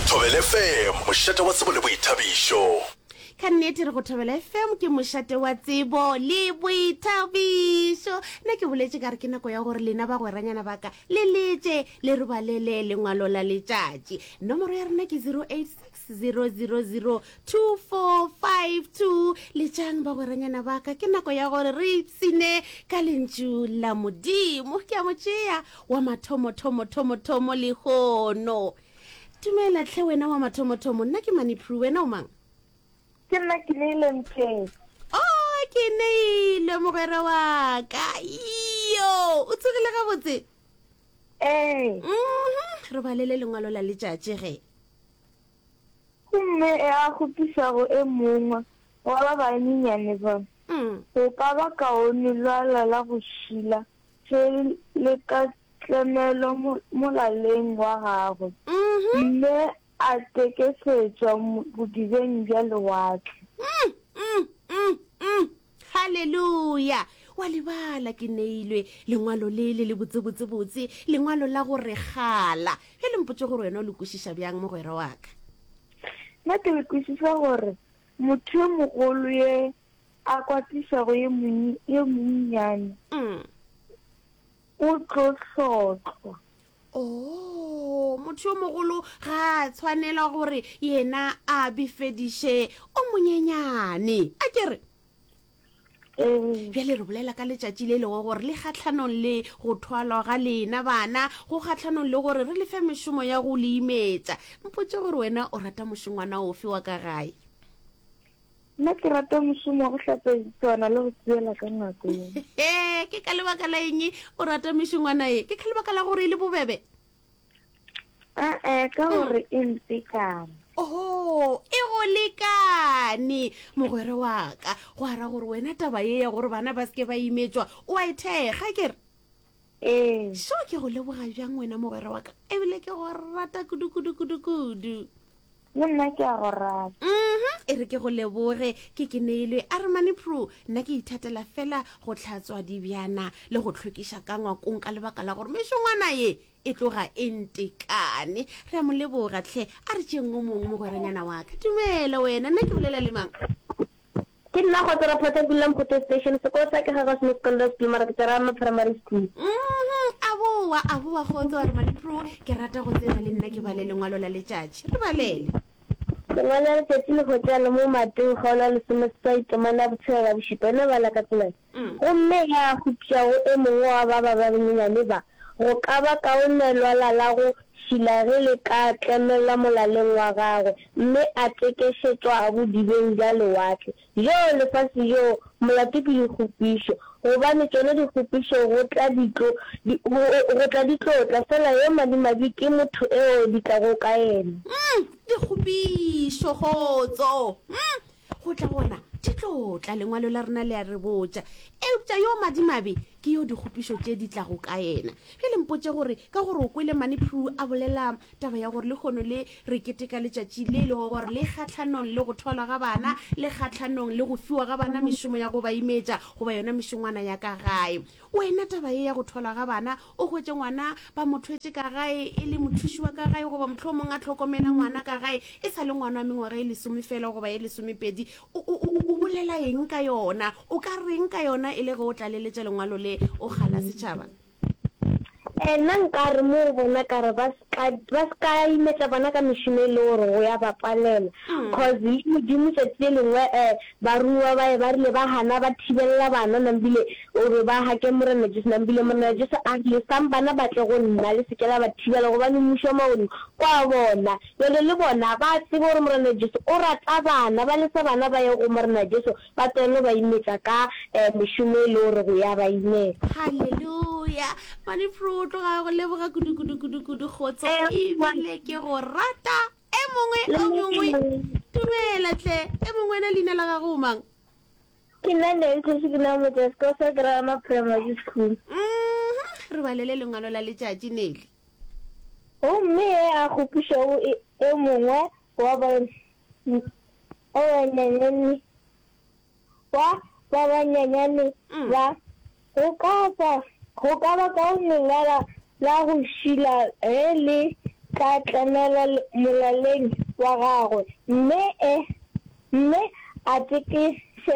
Thobele FM, mošate wa tsebo le boithabišo. ka nnete re go thobela fm ke mošate wa tsebo le boithabišo nna ke boletse ka re ke nako ya gore lena ba gweranyana baka le letse le re balele lengwalo la letšatši nomoro ya rena ke 086 6002452 letšang bagweranyana ba ka ke nako ya gore re ipsine ka lentšu la modimo ke a mo tšea wa mathomothomothomotomo lehono dumela tlhe wena wa mathomothomo nna ke manipru wena o mang ke nna ke neile mpeng o oh, ke neile mogwera wa ka yo o tsogile gabotse ee mm-hmm. re balele lengwalo la letšatši ge Gomme e a kgopiša go e mongwe wa ba banyenyane ba, go ka ba kaone lwala la go šila se le ka tlemelo molaleng wa gagwe, mme a tekesetswa bodibeng bja lewatle. Haleluya! O a lebala, ke neilwe Lengwalo le le lebotse-botse-botse, Lengwalo la go regala. Bjale mpotše gore wena o le kwešiša bjang, mogwera wa ka. Nna ke le kwešiša gore motho yo mogolo ye a kwatišago ye monnye, ye monnyane, o tlo hlotlwa. Oo, motho yo mogolo ga a tshwanela gore yena a befediše o monyenyane. A ke re? Ee. Bjale re bolela ka letšatši le lego gore le kgatlhanong le go thwalwa ga lena bana, go kgatlhanong le gore re lefe mešomo ya go le imetša. Mpotše gore wena o rata mošongwana ofe wa ka gae? Nna ke rata mošomo wa go hlatswa ditswana le go tseyela ka ngako ye. Ee, ke ka lebaka la eng o rata mešongwana ye? Ke ka lebaka la gore e le bobebe? Ee, ka gore e ntekane. Oho, e go lekane mogwere wa ka. Go ara gore wena taba ye ya gore bana ba seke ba imetswa o a e thekga kere? Ee. Seo ke go leboga bjang wena mogwera wa ka, e bile ke go rata kudu-kudu-kudu-kudu. Le nna ke a go rata. Mhm, e re ke go leboge, ke ke neilwe a re mane Prue, nna ke ithatela fela go tlhatswa dibjana le go tlhwekiša ka ngwakong ka lebaka la gore mešongwana ye e tloga e ntekane. Re a mo leboga tlhe, a re tšeeng o mongwe mogweranyana wa ka. Dumela wena, nna ke bolela le mang? Ke nna Kgotsora Photha ke dula Mphoto Station, sekolo sa ke Gagos Miss Condoms School mara ke tswa Rama Primary School. Mmhum, a boa a boa Kgotso a re Maliproo ke rata go tseba le nna ke bale lengwalo la letšatši. Re balele. Lengwalo la letšatši le hwetšagala mo Mateo kgaolo ya lesomeseswai temana ya botshelela bošupa, e no bala ka tsela e. Gomme ge a hupša go e mongwe wa ba ba banyenyane ba, go ka ba kaone lwala la go šila ge le ka tlemelwa molaleng wa gagwe, mme a tekešetšwa bodibeng bja lewatle. Joo, lefase joo, molato ke dikgopišo, gobane tšona dikgopišo go tla di tlo, di, go, go tla di tlo tla, feela yo madimabe ke motho eo di tlago ka yena. Umm, dikgopišo, kgotso. Umm, go tla gona di tlo tla lengwalo la rena le a re botša eupša yo madimabe ke yo dikgopišo tše di tlago ka yena bjale mpotše gore ka gore o kwele mane pru a bolela taba ya gore le kgono le re keteka letšatši le e lego gore le kgatlhanong le go tholwa ga bana le kgatlhanong le go fiwa ga bana mešomo ya go ba imetša goba yona mešongwana ya ka gae Wena taba ye ya go tholwa ga bana, o hwetše ngwana ba mo thwetše ka gae e le mothuši wa ka gae goba mohlomong a hlokomela ngwana ka gae e sa le ngwana wa mengwaga e lesome feela goba ye lesomepedi, o, o, o, o bolela eng ka yona? O ka reng ka yona e le ge o tlaleletša lengwalo le, o gana setšhaba? Ee, nna nka re mo go bona ka re ba se ka, ba se ka imetša bana ka mešomo e le gore go ya ba palela. Cause le Modimo tšatši le lengwe um barumiwa baye ba rile ba hana ba thibelela bana nambile gore ba hake Morena Jesu nambile Morena Jesu a rile sang bana ba tle go nna le se ke la ba thibela gobane mmušo wa magodimo ke wa bona. Bjale le bona ba tsebe gore Morena Jesu o rata bana ba lesa bana ba ye go Morena Jesu Ba tseno ba imetša ka mešomo e le gore go ya ba imela. Haleluya! Mane Prue o tloga a go leboga kudu, kudu, kudu, kudu, Kgotso, e bile ke go rata. E mongwe, o mongwe, dumela tle. E mongwe wena leina la gago o mang? Ke nna Neng Kgoši, ke nna Motšesi, ko Sekerama Primary School. Mm-hmm. Re balele lengwalo la letšatši, Nelly. Gomme e a kgopišago e, e mongwe wa banyenyane wa ba banyenyane ba, go ka ba, go ka ba ka lengala la go šila ge le tla tlemela molaleng wa gagwe, mme e, mme a teke, se,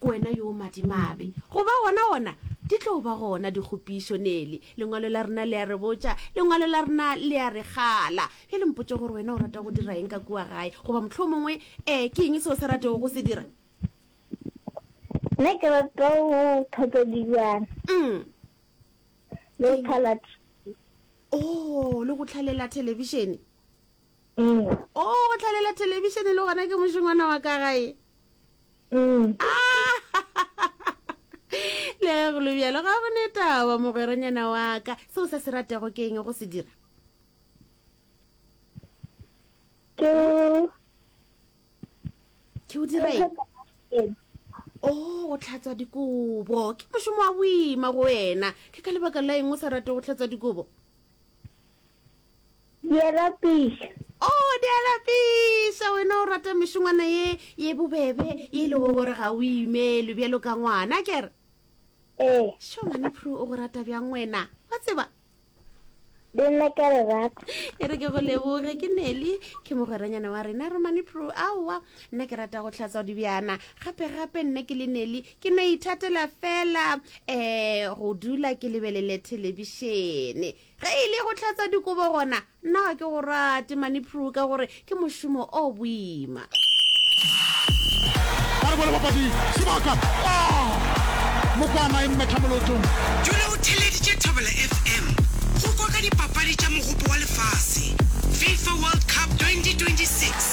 Ke wena yo o madimabe. Go ba gona gona, di tlo ba gona dikgopišo, Nelly. Lengwalo la rena le a re botša, Lengwalo la rena le a re kgala. Bjale mpotše gore wena o rata go dira eng ka kua gae, goba mohlomongwe, ee, ke eng se o sa ratego go se dira? Nna ke rata go tlhatswa dilwana. Umm. Le go tlhala TV. Oo, le go hlalela thelebišene. Mm. Oh, go tlhalela television le gona ke mošongwana wa ka gae. Mm. Ah! le go lobjalo ga go ne taba mogweronyana wa ka seo se se ratego ke eng go se dira ke ke o dira eng o oh, go tlhatswa dikobo ke mošomo wa boima go wena ke ka lebaka la eng o sa rate go tlhatswa dikobo Diarapisa. Oh, diarapisa, wena o rata mešongwana ye ye bobebe ye e lego gore ga o imelwe bjalo ka ngwana kere ee šo ngwane phru o go rata bjang wena wa tseba le nna ka le rata e re ke go leboge ke neli ke mogweranyana wa rena romane phru aowa nna ke rata go tlhatsa dibjana gape gape nna ke le neli ke no ithatela fela um go dula ke lebelele thelebišene ge e le go tlhatsa dikobo gona nna ga ke go rate mane pru ka gore ke mošomo o boima mokwana e mmetha molotong dule o theleditše thabela fm go kwa ka dipapadi tša mogopo wa lefase fifa world cup 2026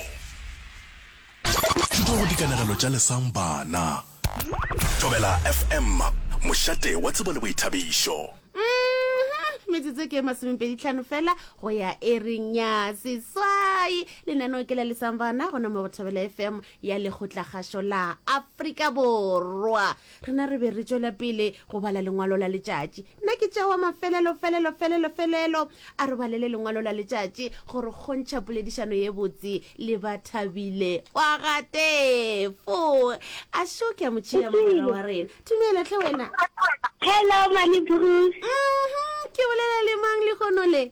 Thuto go dikanegelo tša lesang bana. Thobela FM, mošate wa tsebo le boithabišo. Mmh, metsotso ke e masomepedi tlhano fela go ya ereng ya seswai lenaneo ke la lesang bana gona mo go thobela fm ya lekgotlakgašo la afrika borwa Rena re be re tšwela pele go bala lengwalo la letšatši. Nna ke tšewa mafelelo, felelo, felelo, felelo. A re balele lengwalo la letšatši go re kgontšha poledišano ye botse le ba Thabile wa ga Tefo. A šo ke a mo tšea mogwera wa rena. Dumela, hle wena. Hello, Mani Bruce. Uhum, ke bolela le mang lehono le?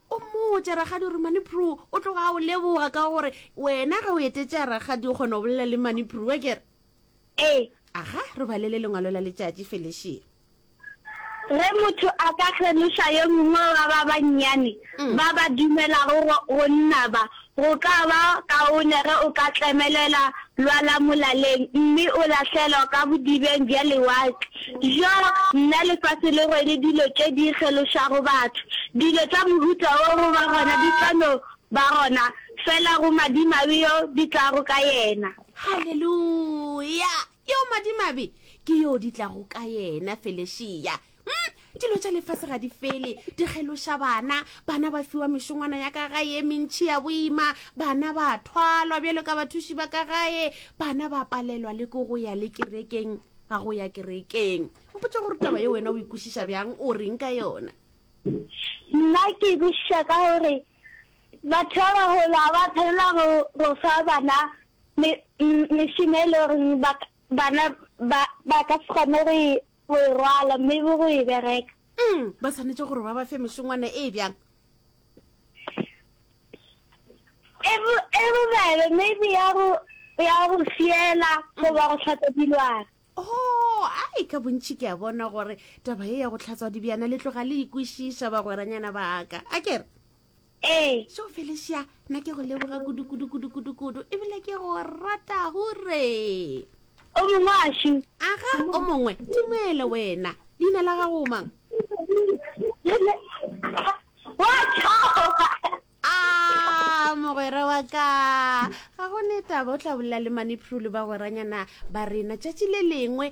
O mmotše, Rakgadi Rumani Prue o tloga a o leboga ka gore wena ge o etetša rakgadi o kgona go bolela le Mani Prue, ke re. Ee. Aga, re balele lengwalo la letšatši, Felicia. Ge motho a ka kgeloša yo mongwe wa ba bannyane ba ba dumelago go nna ba, Go ka ba kaone ge o ka tlemelela lwa la molaleng mme o lahlelwa ka bodibeng bja lewatle. Bjo, nna lefase le rwele dilo tše di kgelošago batho. Dilo tša mohuta wo go ba gona di tla no ba gona feela go madimabe yo di tlago ka yena. Haleluya! Yo madimabe ke yo di tlago ka yena, Felesia. mm, dilo tša lefase ga di fele di kgeloša bana bana ba fiwa mešongwana ya ka gae e mentšhi ya boima bana ba thwalwa bjalo ka bathuši ba ka gae bana ba palelwa le ko go ya le kerekeng ga go ya kerekeng mpotsa gore taba ye wena o ikwešiša bjang o reng ka yona nna ke ikwešiša ka gore batho ba bagolo ga ba tshwanela go fa bana mešomo e le goreng bana ba ka se kgone go e Go e rwala mme bo go e bereka. Eng? Ba swanetše gore ba ba fe mešongwana e bjang? E bo e bobebe maybe ya go ya go fiela goba go tlhatsa dilwana. Oh, ai ka bontši ke a bona gore taba e ya go tlhatswa dibjana le tloga le ikwešiša bagweranyana ba ka. A kere? Ee. Šo Felicia, na ke go leboga kudu kudu kudu kudu kudu ebile ke go rata hure. O mongwe a šu. Aga o mongwe, tumele wena. Leina la gago mang? Wa tšhoga. Ah, mogwera wa ka. Ga go ne taba o tla bolela le mane Phrulu ba goranyana ba rena tšatši le lengwe